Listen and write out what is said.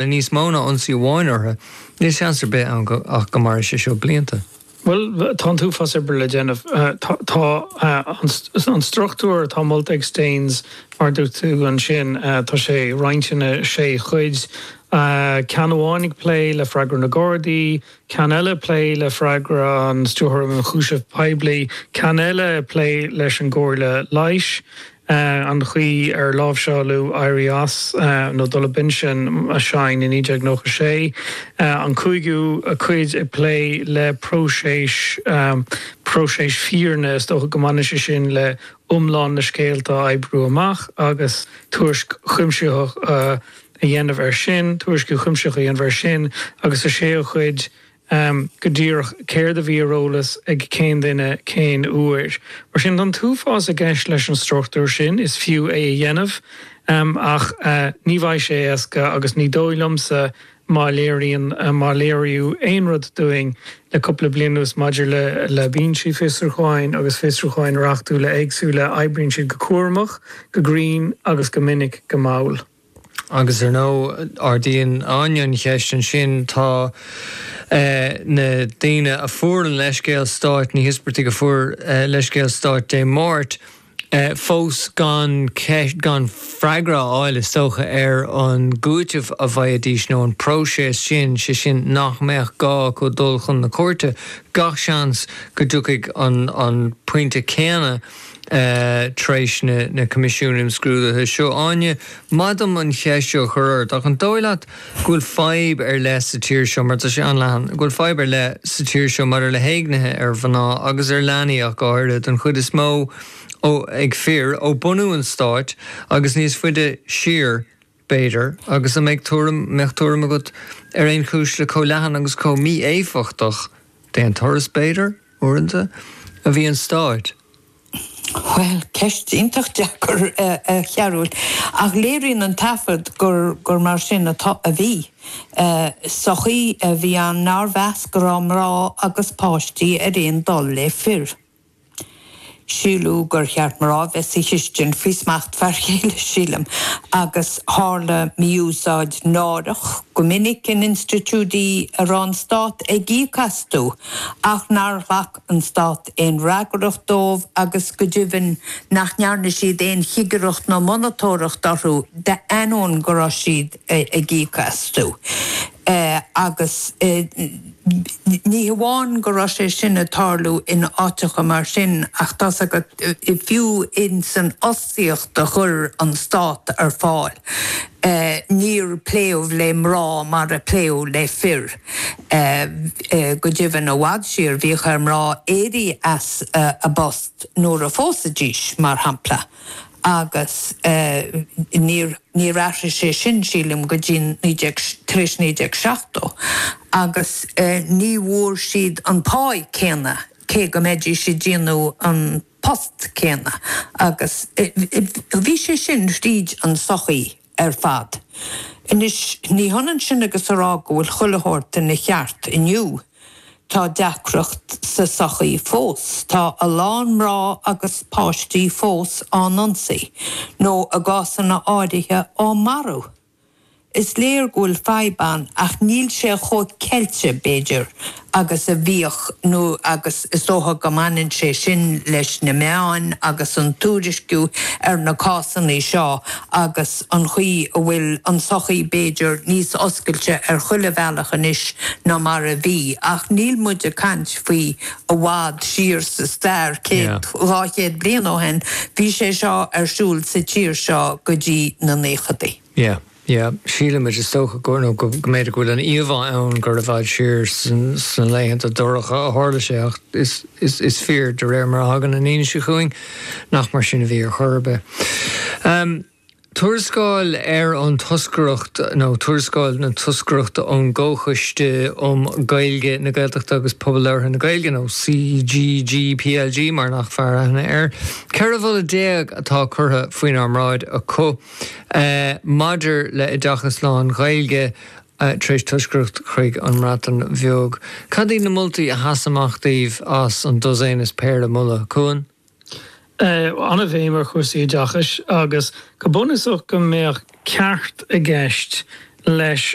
le níos mó ná ionsaí amháin orthu, níl seans ar bith ann ach go mairfidh sé seo blianta. Bhuel, tá an t-uafás oibre le déanamh. Tá an struchtúr atá molta ag Staines, mar a dúirt tú, ansin. Tá sé roinnte ina sé chuid, ceann amháin ag plé le freagra na Gardaí, ceann eile, plé le freagra an Stiúrthóir Ionchúiseamh Poiblí, ceann eile, ag plé leis an gComhairle Leighis, an chaoi ar láimhseáladh éirí as nó dul ar pinsean Shine i 1996, an cúigiú cuid, ag plé le próiseas, próiseas fírinne, is dócha go mbaineann sé sin le iomlán na scéalta a oibriú amach agus tuairisc chuimsitheach a. a dhéanamh air sin, tuairisc chuimsitheach a dhéanamh air sin agus an séú cuid go díreach céard a bhí ar eolas ag cén duine cén uair. Mar sin, tá an t-uafás i gceist leis an struchtúr sin, is fiú é a dhéanamh ach ní bheidh sé éasca agus ní dóigh liomsa má léiríonn, má léiríodh aon rud dúinn le cúpla bliain anuas maidir le binsí fiosrúcháin agus fiosrúcháin reachtúla éagsúla, oibríonn siad go cúramach, go grinn agus go minic go mall. Agus ar ndóigh, ardaíonn Áine an cheist ansin, tá na daoine a fuair an leithscéal stáit, na híospartaigh a fuair an leithscéal stáit Dé Máirt, fós gan, gan freagra a fháil is dócha ar an gcúiteamh a bhfaighidh siad nó an próiseas sin, 'sé sin nach mbeadh gá acu dul chun na cúirte. Gach seans go dtiocfaidh an pointe céanna. tar éis na, na Coimisiúin Imscrúdaithe seo. Áine, maith dom an cheist seo a chur ort, ach an dóigh leat go bhfuil fadhb ar leith sa tír seo, mar tá sé an-leathan, go bhfuil fadhb ar leith sa tír seo maidir le héignithe ar mhná agus ar leanaí ach go háirithe, den chuid is mó ó, ag fir, ó bunú an Stáit agus níos faide siar? b'fhéidir, agus an mbeadh tuairim, mbeadh tuairim agat ar aon chúis le chomh leathan agus chomh mí-éifeachtach, d'aon turas b'fhéidir, uaireanta, a bhí an stát. Bhuel, ceist iontach deacair, a Chearbhaill, ach léiríonn an taifead gur, gur mar sin atá, a bhí. Sochaí a bhí ann nár mheas go raibh mná agus páistí ar aon dul le fir. Síleadh gur cheart mná bheith sa chistin faoi smacht fear céile, sílim, agus tharla mí-úsáid náireach go minic in institiúidí a raibh an Stát ag íoc astu ach nár ghlac an Stát aon fhreagracht dóibh agus, go deimhin, nach ndearna siad aon chigireacht nó monatóireacht orthu d'ainneoin go raibh siad ag íoc astu. Agus ní hamháin go raibh sé sin ag tarlú in áiteacha mar sin ach tá's agat, fiú ins an fhostaíocht a chuir an Stát ar fáil, níor pléadh le mná mar a pléadh le fir. Go deimhin, i bhfad siar, bhíodh ar mná éirí as a bpost nuair a phósaidís, mar shampla. agus níor athraigh sé sin, sílim, go dtí 19 tar éis 1970, agus ní bhfuair siad an pá céanna cé go mbeidís ag déanamh an post céanna, agus bhí sé sin thríd an sochaí. ar fad. Anois, ní hionann sin agus a rá go bhfuil chuile shórt ina cheart inniu. Tá deacracht sa sochaí fós. Tá a lán mná agus páistí fós á n-ionsaí, nó i gcásanna áirithe á marú. Is léir go bhfuil fadhb ann ach níl sé chomh ceilte, b'fhéidir, agus a bhíodh nó agus is dócha go mbaineann sé sin leis na meáin agus an tuairisciú ar na cásanna seo agus an chaoi a bhfuil an tsochaí b'fhéidir níos oscailte ar chuile bhealach anois ná mar a bhí ach níl muid ag caint faoi i bhfad siar sa stair, céad, dhá chéad bliain ó shin, bhí sé seo ar siúl sa tír seo go dtí na nóchaidí. Yeah, sílimid, is dócha, go, nó go, go mb'fhéidir go bhfuil an íomhá ann gur i bhfad siar sna laethanta dorcha a tharla sé ach is, is, is fíor, de réir mar a thagann an fhianaise chugainn, nach mar sin a bhí ar chor ar bith. Um Tuarascáil ar an Toscaireacht, nó Tuarascáil na Toscaireachta ón gComhchoiste um Gaeilge, na Gaeltachta agus Pobal Labhartha na Gaeilge, nó CGG, PLG mar nach fearr aithne air. 14 mholadh atá curtha faoinár mbráid acu. maidir le hoideachas lán-Ghaeilge tar éis toscaireacht chuig an mBreatain Bheag. Cad iad na moltaí a sheas amach daoibh as an dosaen is péire moladh? Cuan. an-bhéim ar chúrsaí oideachais agus go bunúsach go mbeadh ceart i gceist leis